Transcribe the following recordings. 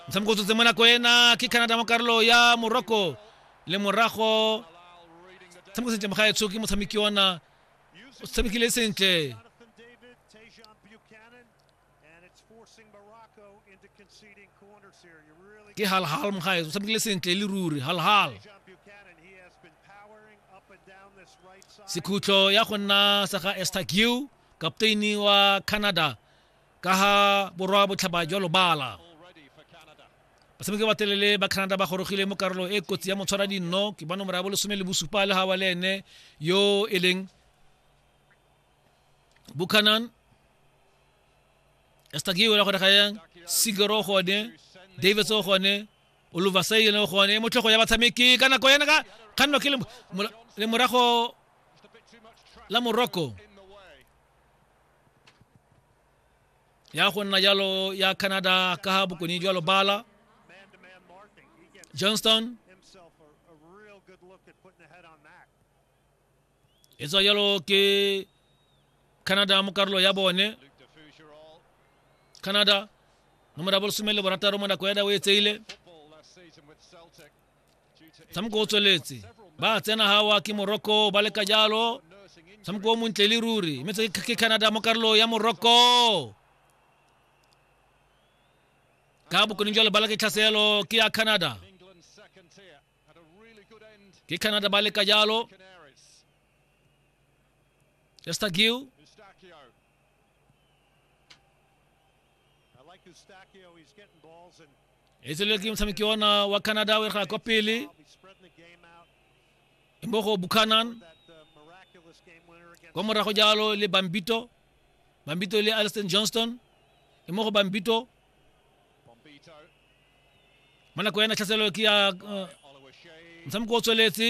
motshameko o tsotse mo nako ena ke canada mo karolo ya morocco le morago tshameko sentle mogaetsho ke motshameki ona o tshamekile sentle ke halhal mogaetso o tshamekile sentle e le ruri halhal sekhutlo ya go nna sa ga estagiu kapteini wa canada ka ga borwa botlhaba jwa lobala batshameki ba telele ba canada ba gorogile mo karolo e kotsi ya motshwara dinno ke ba nomoro ya bolesome le bosupa le gawa le ene yo e leng buchanan estakiwe la gore ga yang sigero gone davis o gone oluvasai le gone motlhogo ya batshameki ka nako yana ka kganno ke le morago la morocco ya go nna jalo ya canada ka ga bokone jwa lobala johnston e tswa jalo ke canada mo karolo ya bone canada nomoro ya bolesome le borataro mo nako ya dawe e tseile motshameko o tsweletse ba tsena gawa ke morocco ba leka jalo motshameko o montle le ruri mme tse ke canada mo karolo ya morocco ka bokoning jalo ba leka tlhaselo ke ya canada ke canada ba leka jalo estagiu e tsele ke motshameki ona wa canada o erga kwa pele mo go buchanan kwa morago jalo le bambito bambito le alston johnston e mo go bambito mo nako ena tlhaselelo ke ya uh, motshameko o tsweletse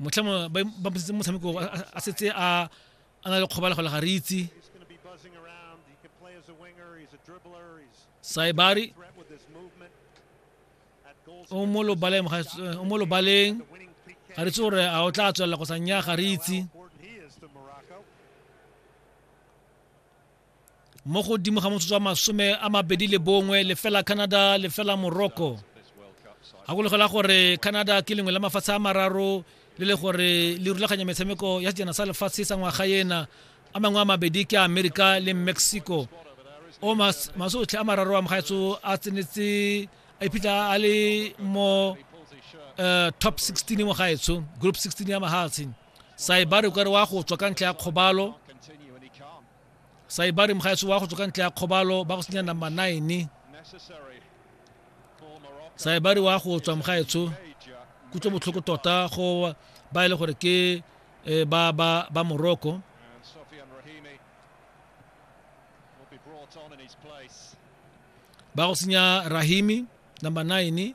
motlhamo ba mpusitse motshameko a setse a a na le kgobala go le ga re itse saibari o mo lobaleng o mo lobaleng ga re tse gore a o tla tswelela go sa nya ga re itse mo godimo ga motsotso wa masome a mabedi le bongwe lefela canada lefela morocco gakologela gore canada ke lengwe la mafatshe a mararo le le gore le rulaganya metshameko ya sejana sa lefatshe sa ngwaga ena a mangwe a mabedi ke america le mexico o masotlhe a mararo a mogaetso a tsenetse a iphitlha a le mo eh, top 16 mogaetsho group 16 ya mahatshe saibari o kare wa go tswa ka ntlha ya kgobalo saibari mogaetso wa go tswa ka ntlha ya kgobalo ba go senya number nine saibari wa go tswa mogaetsho kutlwe botlhoko tota go ba e le gore ke eh, ba ba ba morocco ba go senya rahimi number nine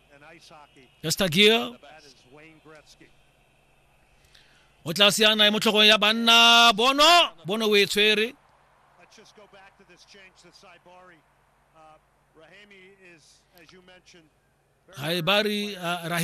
ya stagier o tla siana e mo tlhogong ya banna bono bono o e tshwere haibari uh, rahim